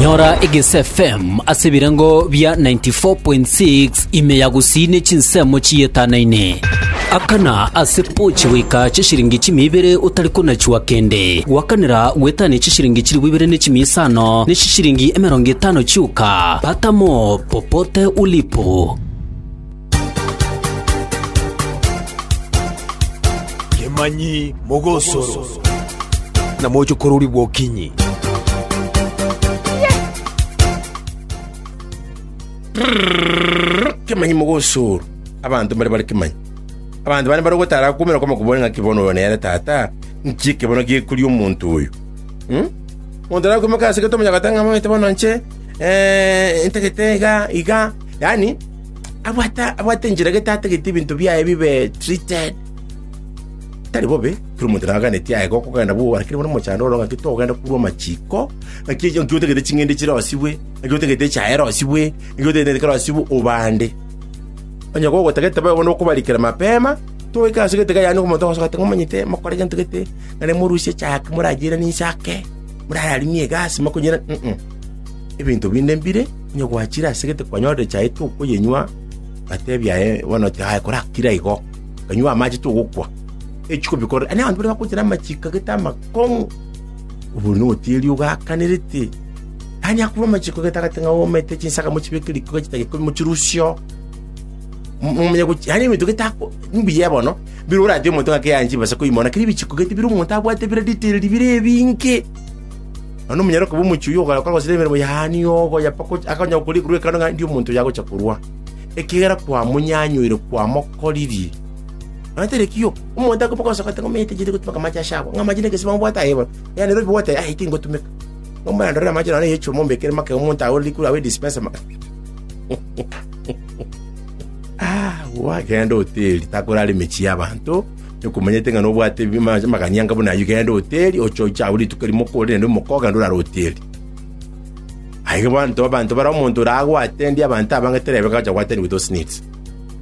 Nyora Egese FM ase ebirengo bia 94.6 ime ya gusii ne chinsemo chiyetanane. Akana ase pochi goika chishiringi chimia ibere otari konachua kende. Gwakanera gwetania chishiringi chilifu ibere ne chimia isano ne chishiringi emerongo etano chioka. Pata mo popote ulipo. Kemanyi mogosoro. Na moche kororigwa okinyi. Rrrr, kemanyi mogosoro. Abanto mbare bare kemanyi. Abanto bane bare gotara akumera kwama kobua ng'a kibono oyo nere tata, nki ekebono gekoria omonto oyo. Hmm? Monto nakwimaka ase gete omonyagate ng'a mamete bono nche, eh, ntagete iga, iga. Yaani, Abwate, abwate enchera gete atagete ebinto biaye bibe treated. Tari bobe, kera omonto nigo aganetie aye gokogenda bwogora kere buna omochando oro ng'aki togenda korwa amachiko, ng'aki echi- ng'aki otagete ching'ende chirosibwe, ng'aki otagete echae erosibwe, ng'aki otagete gento kerosibwe obande. Onye gogotagete bobe bono okobarikera mapema, togoika ase egete yaani omonto ogosoka ati ng'omonyete mokore gento gete, naende morusie echae ake morayeiranesie ake, morararimie egasi mokonyira, mm. Ebinto binde mbire, Onye gwachire ase egete kwanyora echae tokoyenywa, ngatebia aye bono ati aye korakire igo, kanywe amache togokwa. Echiko bikore, ani abanto baria bakochera amachiko agete amakong'u, obori na ogotiiri ogakanerete. Tani akorwa amachiko gete agate ng'a omete chinsakamo chibeke riko gachita gikumi mochirusio. M- Momenye gochi, yaani ebinto gete ako, mbuya bono, bire orati omonto ng'a keyani chibesa koimoa, lakini ebichiko gete bire omonto abwate bire detailed bire ebinge. Nonya omonyaroke bw'omochie oyio ogayoka gosira emeremo yaani obo yapakwa akanonya gokora ekerua ekerone ng'a erio omonto oyo agocha korua, ekiagera kwamonyanyoire, kwamokoririe. Nonya tari ekio, omonto akoba gosoka ng'a omanyete inche tigotumeka amache aase agwo, ng'a amache negesibao mbwate aye bono, yaya nere obibogote aye, aye tingotumeka. Igo mbwene ndorere amache nonye eyochia omombekere make omonto aye ore rikure abe dispenser make. Agwo agende hoteli, takorara emechie y'abanto. Nkomanyete ng'a nobwate amagani anga buna ayio, genda hoteli, oche oche agwo rituko erimo okore naende omoke ogende orare hoteli. Aye abanto abanto bare omonto ore agwo atendia abanto abange terebe ng'a ocha gwatenigwa those needs.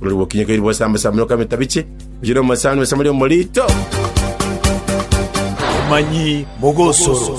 Olori gokinya keri bosamba samba noka emetabichi, ochi nomosani bosamba ri omorito. Omanyi bw'ogosoro.